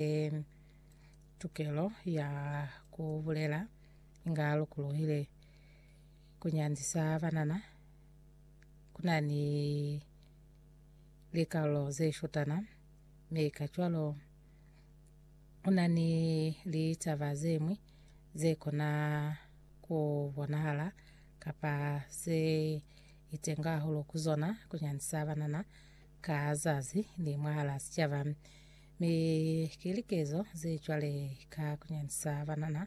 e tukelo ya ku bulela inga lukuluhile ku nyandisa banana ku na ni likarolo ze shotana me ka cwalo ku na ni litaba ze mwi ze kona ku bonahala kapa se itenga hahulu ku zona ku nyandisa banana ka zazi ni mwahala sicaba Mi ki likezo ze cwale ka kunyandisa banana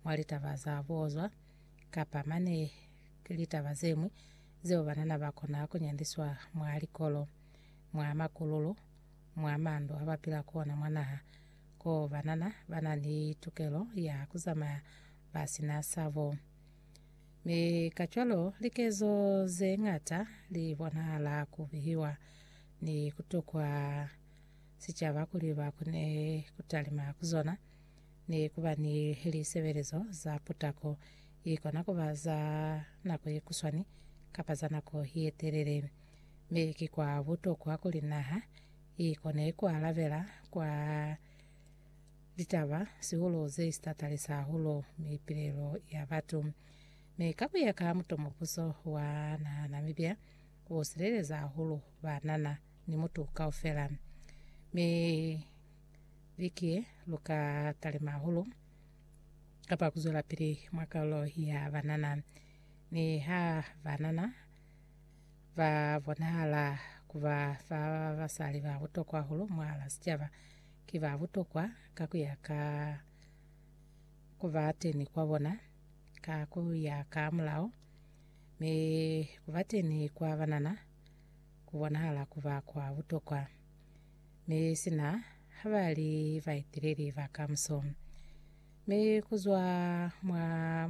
mwa litaba za buozwa, kapa mane litaba zeñwi zeo banana bakona kunyandiswa mwa likolo, mwa makululu, mwa mandu abapila ku ona mwa naha, ko banana bana ni tukelo ya kuzamaya basina sabo. Mi kacwalo likezo zeñata libonahala kubihiwa ni kutukwa sicaba kuli ba kone ku talima ku zona ni ku ba ni lisebelezo za putako i kona ku ba za nako ye kuswani kapa za nako ye telele. Mi ki kwa butokwa kuli naha i kone ku alabela kwa litaba sihulu ze si tatalisa hahulu mipilelo ya batu. Mi ka ku ya ka mutomubuso wa naha Namibia, u sileleza hahulu banana. ni mutu kaufela. Mi viki ye, lu ka talima hahulu kapa ku zwelapili mwa kalulo ya banana. Mi ha banana ba bonahala ku ba fa basali ba butokwa hahulu mwahala sicaba, ki ba butokwa ka ku ya ka ku ba teni kwa bona, ka ku ya ka mulao, mi ku ba teni kwa banana ku bonahala ku ba kwa butokwa, mi sina ha ba li baeteleli ba kamuso. Mi ku zwa mwa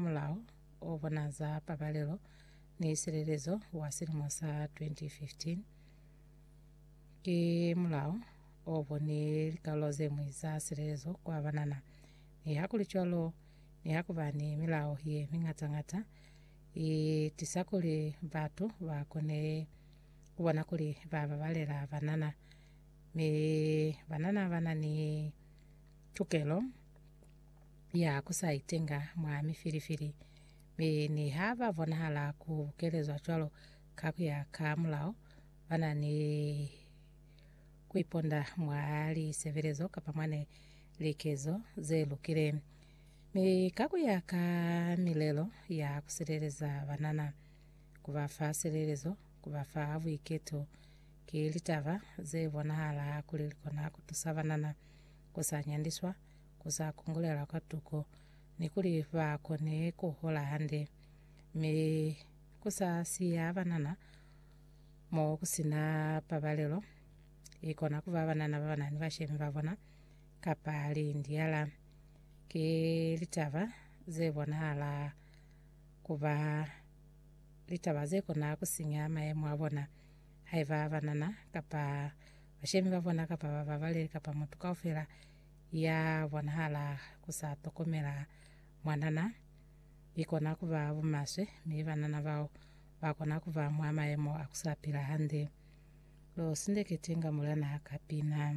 Mulao o Bona za Pabalelo ni Silelezo wa silimo sa 2015, ki mulao o boni likalolo ze ñwi za silelezo kwa banana. Nihakulicwalo, nihakuba ni milao ye miñata-ñata, I tisa kuli batu ba kone ku bona kuli ba babalela banana, mi banana ba na ni tukelo ya ku sa itenga mwa mifilifili. Mi niha ba bonahala ku bukelezwa cwalo ka ku ya ka mulao, ba na ni ku iponda mwa lisebelezo kapa mwa likezo ze lukile. Mi ka ku ya ka milelo ya ku sileleza banana, ku ba fa silelezo, ku ba fa buiketo ki litaba ze bonahala kuli li kona ku tusa banana ku sa nyandiswa, ku sa kungulelwa kwa tuko, ni kuli ba kone ku hola hande, mi ku sa siya banana mo ku si na pabalelo. I kona ku ba banana ba ba na ni bashemi ba bona kapa lindiala, ki litaba ze bonahala ku ba litaba ze kona ku sinya mayemo a bona. Haiba banana kapa bashemi ba bona kapa bababaleli kapa mutu kaufela ya bonahala ku sa tokomela mwanana, i kona ku ba bumaswe, mi banana bao ba kona ku ba mwa mayemo a ku sa pila hande. Lo sindeketi nga mulena ka pina.